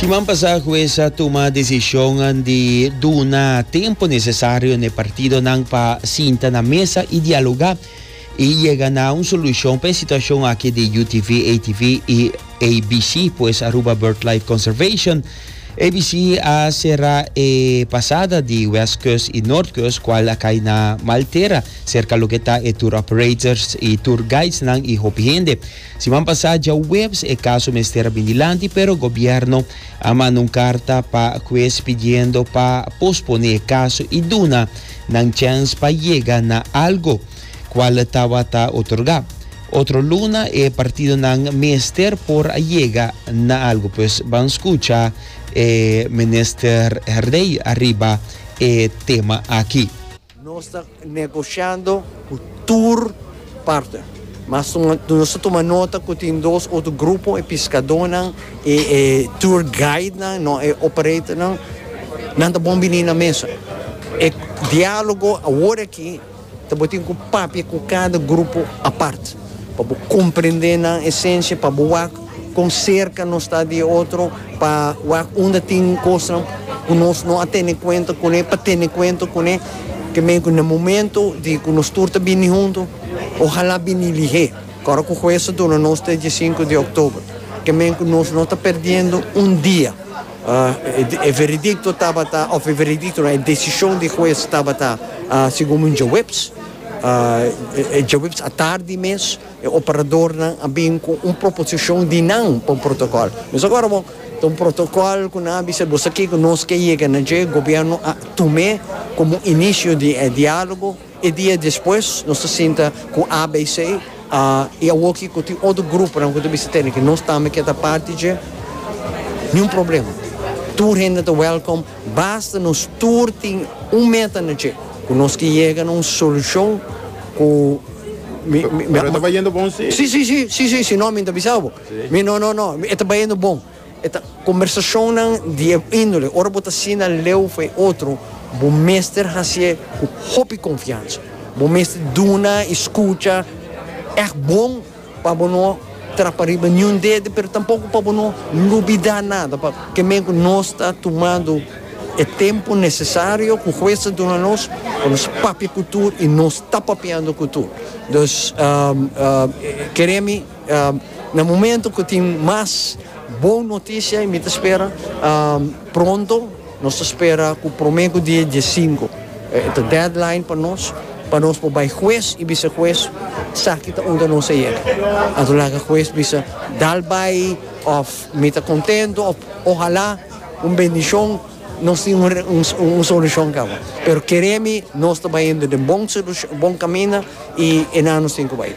Siman pasá hues a tuma desishon di duna tempu nesesario na e partidonan pa sinta na mesa i dialogá i yega na un solushon pa e situashon aki di UTV, ATV i ABC, pues Aruba Birdlife Conservation. ABC a será e pasada di West Coast i North Coast kual a kai na mal tera serka loke ta e tour operators i tour guidesnan i hopi hende. Siman pasá djaweps e kaso mester a bin dilanti pero gobièrnu a manda un karta pa kues pidiendo pa posponé e kaso i duna nan chèns pa yega na algu, kual tabata otorgá. Otro luna e partidonan mester por a yega na algu pues ban skucha e Minister Herdey ariba e tema aki. Nos ta negociando cu tur parte, mas nos ta tuma nota cu tin dos otro grupo, e piscadornan y e tour guidenan, no e operatornan, nan ta bon bini na mesa. E dialogo aworaki tabatin cu papia cu cada grupo apart. Pa bo comprende nan esencia, pa bo wak con cerca nos ta di e otro, pa wak unda tin cosnan cu nos no a tene cuenta con e, pa tene cuenta con e. Te mey cu na momento di cu nos tur ta bini hunto, ohala bini lihé, cu ora cu Hues a duna nos ta e diesinco di October, te mey cu nos no ta perdiendo un dia. E veredicto tabata, of e veredicto no, e decision di Hues tabata segun un djaweps. E djobips atardi mes e operadornan a bin cu un proposicion di nan pa un protocol. Nos a gora bon, ta un protocol cu nan a bisa boso aki cu nos ke yega na dje, gobierno a tum'e como un inicio di e dialogo. E dia despues nos ta sinta cu ABC y awoki cu tin otro gruponan cu ta bisa tene ke nos tambe ke ta parti dje, ni un problema. Tur hende ta welcome. Basta nos tur tin un meta anoche cu nos ki yega na un solucion cu. Pero e ta bayendo bon si? Si, si, si, si, si, si no mi ta bisaba bo. Mi, no, no, no, e ta bayendo bon. E ta conversacionnan di e indole, ora bo ta asina leu for e otro, bo mester haci'e cu hopi confiansa, bo mester duna y scucha echt bon. Pa bo no trapa riba niun dede, pero tampoko pa bo no lubidá nada, pa ke men ku nos ta tumando e tempu nesesario ku hues ta duna nos pa nos papia ku tur i nos ta papiando ku tur. Dus, keré mi na momento ku tin mas bon notisia, i mi ta spera pronto, Nos ta spera cu prome cu die diesinku e ta deadline pa nos, pa nos por bay hues y bisa hues esaki ta unda nos a yega. Anto laga hues bisa dal bay of mi ta contento of ohala un bendicion nos tin un solucion caba. Pero kere mi nos ta bayendo den bon bon caminda y e nan nos tin cu bay.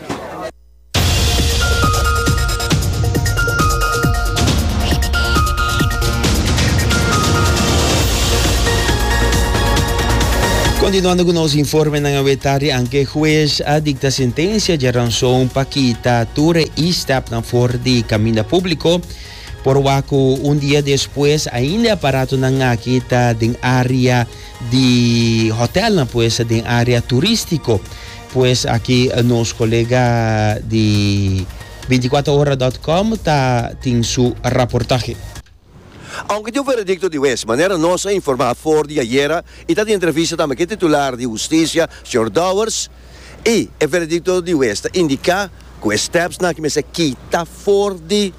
Continuando cu nos informenan awe tardi anke hues a dicta sentencia dje ranson pa kita tur e e-step nan for di caminda publico. Por waku un dia despues ainda e aparatonan aki ta den area di hotelnan pues, den area turistico. Pues aki nos colega di binticuater ora dot com ta tin su raportahe. Aunke tin un veredicto di huez, manera nos a informa for di ayera y ta di entrevista tambe cu e titular di Husticia, señor Dowers, y e veredicto di huez ta indica cu e stepsnan cu mester kita for di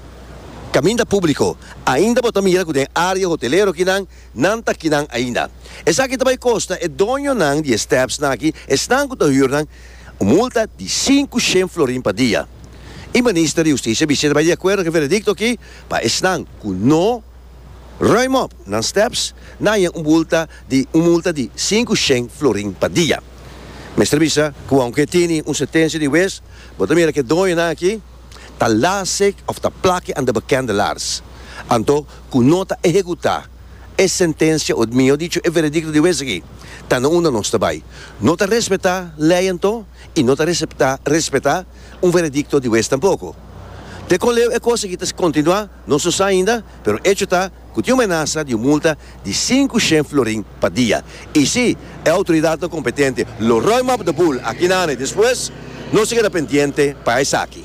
caminda publico, ainda bo ta mira cu den area hotelero akinan, Nan ta kinan ainda. Esaki ta bai kosta e doñonan di e stèpsnan aki, esnan ku ta hür nan, un multa di sinku shen florin pa dia. E Minister di Hustisia bis'é ta bai di akuerdo ku e veredikto aki pa esnan ku no ruim op nan stèps na haña un bulta di un multa di sinku shen florin pa dia. Mester bisa ku aunke e tini un sentensia di wes, bo ta mira ku e doñonan aki, ta lasek of ta plake anda bekende laars, anto ku no ta ehekutá e sentensia o mihó dicho e veredikto di wes aki, ta na unda nos ta bai. No ta respetá lei anto i no ta respetá un veredikto di wes tampoko. Te kon leu e kos aki ta kontinuá. No su sa ainda, pero echo ta cu tin un menasa di un multa di sinku shen florin pa dia. Y si e autoridadnan competente lo ruim map de boel aki nan e despues, nos a keda pendiente pa esaki.